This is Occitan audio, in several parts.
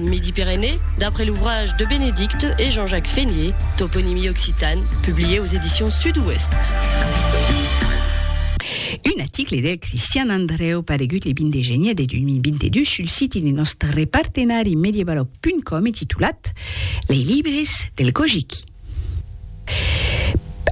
Midi-Pyrénées, d'après l'ouvrage de Bénédicte et Jean-Jacques Fénié, Toponymie occitane, publié aux éditions Sud-Ouest. Un aticle de Cristian Andreu paregut le 20 de genier de 2022 sul siti de nòstre partenari medievalog.com e titulat Lei libres del Kojiki.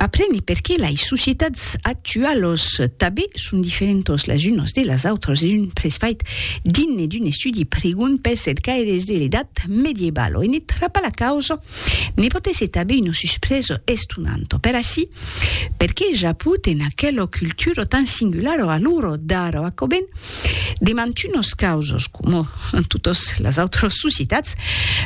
Apreni perqué lei societats actualos tabe son diferentos les unos de les autres es un pres fait digne d'un estudi prigon pels cercaires de l'edat medievalo e ne trapa la causa ne pot èsser tabe una suspresa estonanta per ací perqué ja put en aquela cultura tan singulara a l'ora d'ara aquò ben de mantunos causos, coma en totas las autras societats,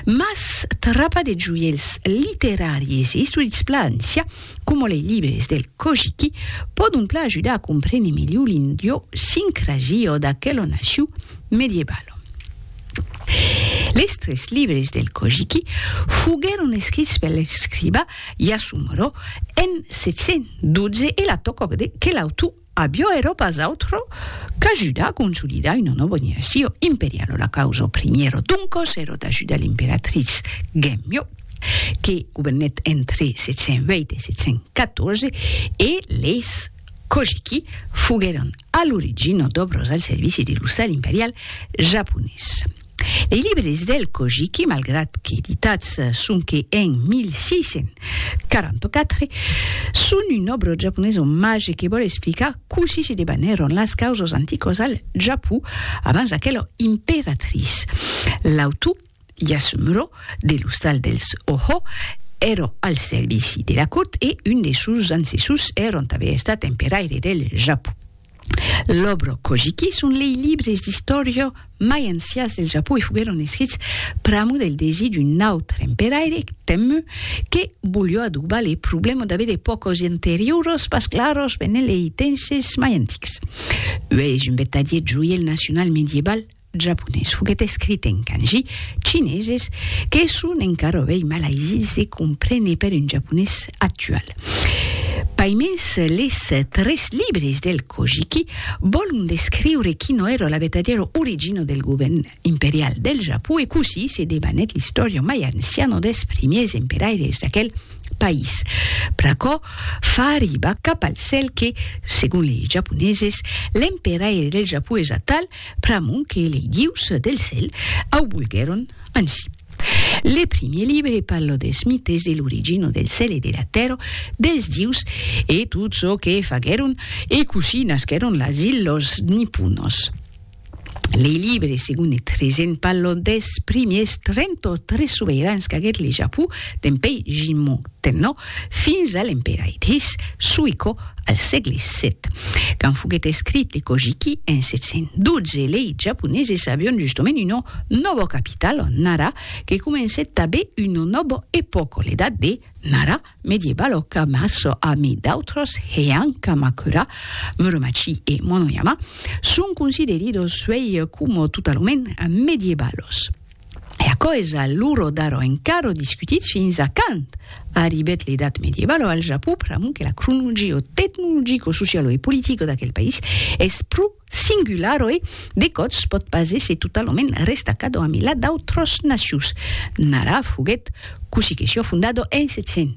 mas trapa de joièls literaris e istorics Plancia, coma lei libres del Kojiki, pòdon plan ajudar a comprene melhor l'indiosincrasia d'aquela nacion medievala. Les tres libres del Kojiki foguèron escrits per l'escriba Yasumoro en 712 e la tòca que l'autor Avió ero pas autre qu'ajudar a consolidar una nòva organizacion imperiala, la causa primièra doncas ero d'ajudar l'emperatriz Genmyo, que governèt entre 708 e 714, e leis Kojiki foguèron a l'origina d'òbras al servici de l'ossal imperial japonés. Lei libres del Kojiki, malgrat qu'editats sonque en 1644, son un òbro japonés omatge que vòl explicar cossí se debanèron las causas anticas al Japó abans d'aquela imperatrice. L'autor, Yasumuro, de l'ostral dels Oho, èra al servici de la cort e un de sos ancessors èra tanben estat emperaire del Japó. L'òbro Kojiki son lei libres d'istòria mai ancias del Japó e foguèron escrits pr'amor del desir d'un autre emperaire, Tenmu, que volió adobar le problèma d'aver de pòcos interioros pas claros venent lei tenses mai antics. Ue es un vertadier joièl nacional medieval japonés foguèt escrit en kanji chineses que son encara ovei malaisits de comprene per un japonés actual. Paimens les tres libres del Kojiki vòlon descriure quino èra la vertadièra origina del govèrn imperial del Japó e cossí se debanèt l'istòria mai anciana dels primièrs emperaires d'aquel país. Pr'aquò fa arribar cap al cèl que, segon les japoneses, l'emperaire del Japó es atal Pr'amor que lei dius del cèl au volguèron ansi. Le primier libre parla des mites de l'origina del cèl e de la tèrra, dels dius e tot çò que faguèron e cossí nasquèron las illas niponas. Lei libre segon e tresent parla des primiers 33 sobeirans qu'aguèt le Japon dempèi Jimmu. tenò fins a l'emperaitris Suiko al sègle vii. Quand foguèt escrit le Kojiki en 712, lei Japoneses avián justement una nòba capitala, Nara, que comencèt tanben una nòba epòca, l'edat de Nara medieval o Kamaso, amid d'autras, Heian, Kamakura, Muromachi e Monoyama, son consideridos uèi coma totalament medievalos. E aquò es a l'uro d'aro encara discutit fins a quand arribèt l'edat medievalo al Japon, pr'amor que la cronologia tecnologico, socialo e politico d'aquel país es pro singularo e, de còps, pòt pas èsser totalament restacado amilhat d'autras nacions. Nara foguèt cossí que sió fondado en 700.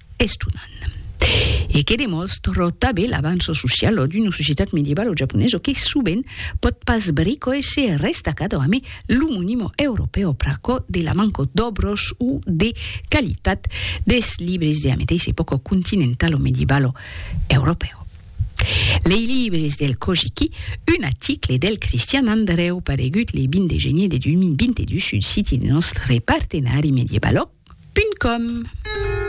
estonan e que demòstra tanben l'avanço social d'una societat medieval o japonesa que sovent pòt pas brico èsser restacada amé lo monimo europèu pr'aquò de la manca d'òbros o de qualitat des libres de la meteissa epòca continentala o medievalo europèu. Lei libres del Kojiki, un aticle del Cristian Andrèu paregut le 20 de genier de 2022 sul siti de nòstre partenari medievalòg. Com.